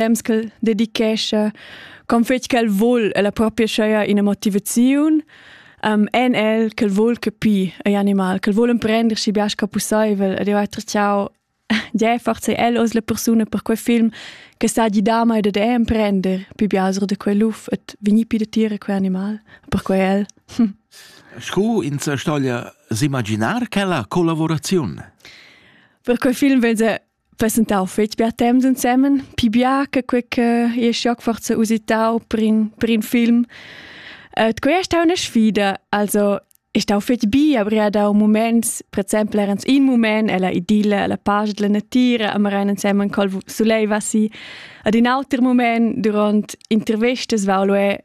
temps ch'el dedichescha con fetg ch'el vul e la propria scheia ina motivaziun um, en el ch'el vul capir agl animal, ch'el vul emprender schi bias ca pusseivel ed io ha tracciau de forza el os la persuna per quei film che sa di da mai de emprender più biasro de quei luf et veni pi de tire quei animal per quei el Scu in sa stoglia s'imaginar quella collaboraziun? Per quei film vese passentau fetg bia temps ensemen, pi bia che quei che io schoc forza usitau per in, per in film. Uh, quei è stata una sfida, also è stata fetg bi, aber era da un moment, per esempio era in moment, è la idilla, la pace della natura, a Marein insieme col solei, was sie ad in altro moment durante interviste, weil è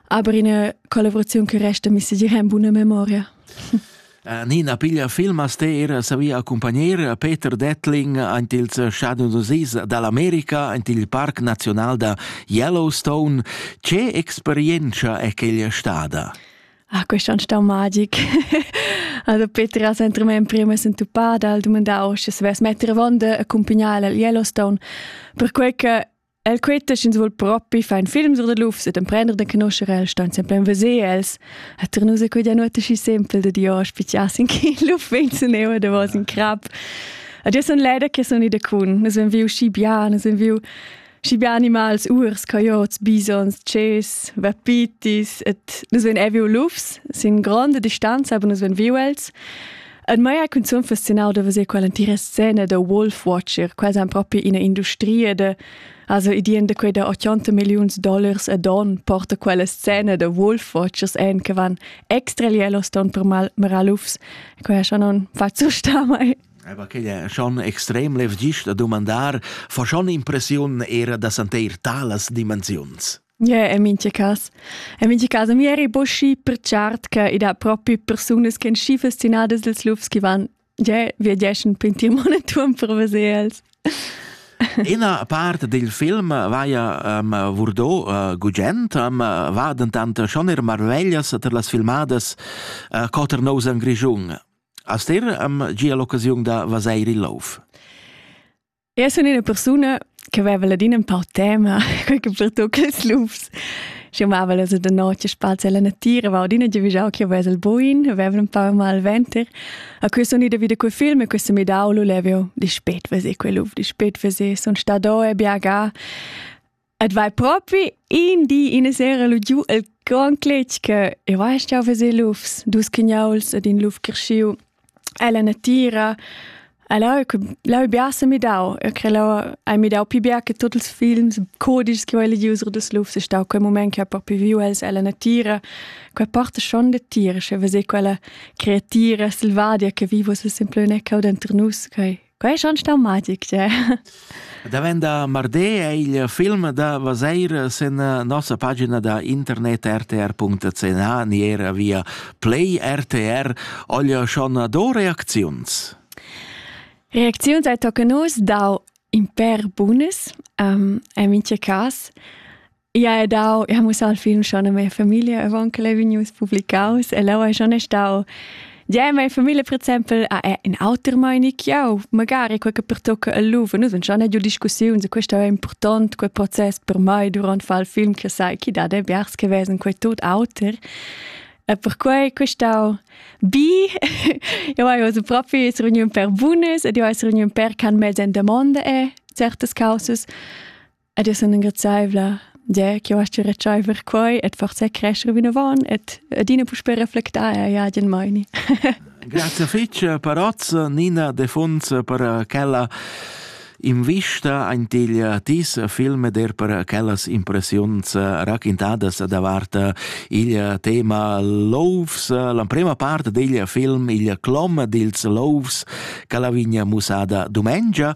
Aber eine Kollaboration che resta mi segir en buna memoria. Eh, Nina piglia film a steer savi accompagnare Peter Detling ant ils Shadows of Seas dall'America ant il Parc Nazional da Yellowstone. Che experienza è quella stada? Ah, questo è stato magico. Also Peter ha sempre me in prima sentupada al domandare se es metter vonde accompagnare a Yellowstone, per quel che El critisch ins vul propi far in film sur de lufs et emprender de conoscere el, stan sempre in veser els. A Ternus è quella notte schi sempre de Dio spizias in chi luf venzen eu de vos in crap. Ad io son leider che son ida cun, nus en viu schi bien, nus en viu schi bien animals, urs, coyotes, bisons, ches, vapitis, et nus ven eviu lufs, sin grande distanza, aber nus ven viu els. En maya cunzun fascinau da veser quell'entira scena da Wolf Watcher, quasi proprio ina industria de Also ideen da quei da 80 millions dollars ad on porta quella scena da Wolf Watchers en che van extra lielos ton per mal maralufs, quei schon non faccio sta mai. Aber che è schon extrem lev gist a domandar, fa schon impressiun era da santeir talas dimensiuns. Yeah, in mincha cas. In mincha cas, mi eri bo schi pertschart che i dat propi persunas ch'en schi fastinadas dels lufs che van, yeah, viegeschan pintir monoton per veser els. Ina part del film vaia um, vurdo uh, gugent, um, va dentant schon er marveglias per las filmadas uh, Cotter Nose in Grischun. Aster um, gia l'occasiun da vaseir il lauf. Eu sun üna persuna che vaiva ladina ün pau tema, quai che pertuocha ils lufs. Sch'eu mava lö da noce spazi alla natira, vau adina giavüschau ch'eu vess il buin, vaiva ün pau mal venter. A questa uni da vita quei film e questa mi dau lu levio dispet veser quei luf, dispet veser, sun sta do e biagà. Et vai propi in di ina sera lu giu el grand cletg che e vai stau veser lufs, dus cignuls ed in luf cresciu ella natira. Allora l'ho biasa midau, eu cre l'ho hai midau pi bia che tuot ils films codischs che ho legius sur das lufs, è stau quel moment che ho propi viu els ella natira. Quella porta schon da tira, sche veser quella creatira selvadia che viva sul semplone cau denter nus, quei Quai è schon staumatic, tge? Davenda mardi è il film da Vaseir sin nossa pagina da internet rtr.ch ni era via Play RTR. Olha schon do reacziuns. Reacziuns ai tocca nus dau in per bunas, um, en mince cas. Ia è dau, ia mussau il film schon a mia famiglia avant che l'è vegnius publicaus e leu è schon stau Ja, meine Familie, per esempio, è in alter meinung ja, magari quel che pertocca il Louvre. Noi abbiamo già giù discussioni su questo è importante, quel processo per me durante il film che sai che da de vers che wesen quel tot alter. E per cui questo bi, io ho una propria riunion per Bunes e io ho una riunion per can mezzo in domanda e certe cose. Ed io sun ingrazzaivla d'he ch'eu ascha retschaiver quai et forsa crescher vinavant et adina puspè reflectar eir ad in maini. Grazie fece Parozza Nina De Fonz per quella invista ein til tis film der per quellas impressiuns raquintadas davart il tema louvs l'emprema part degl film il clom dils louvs che la vigna musada domengia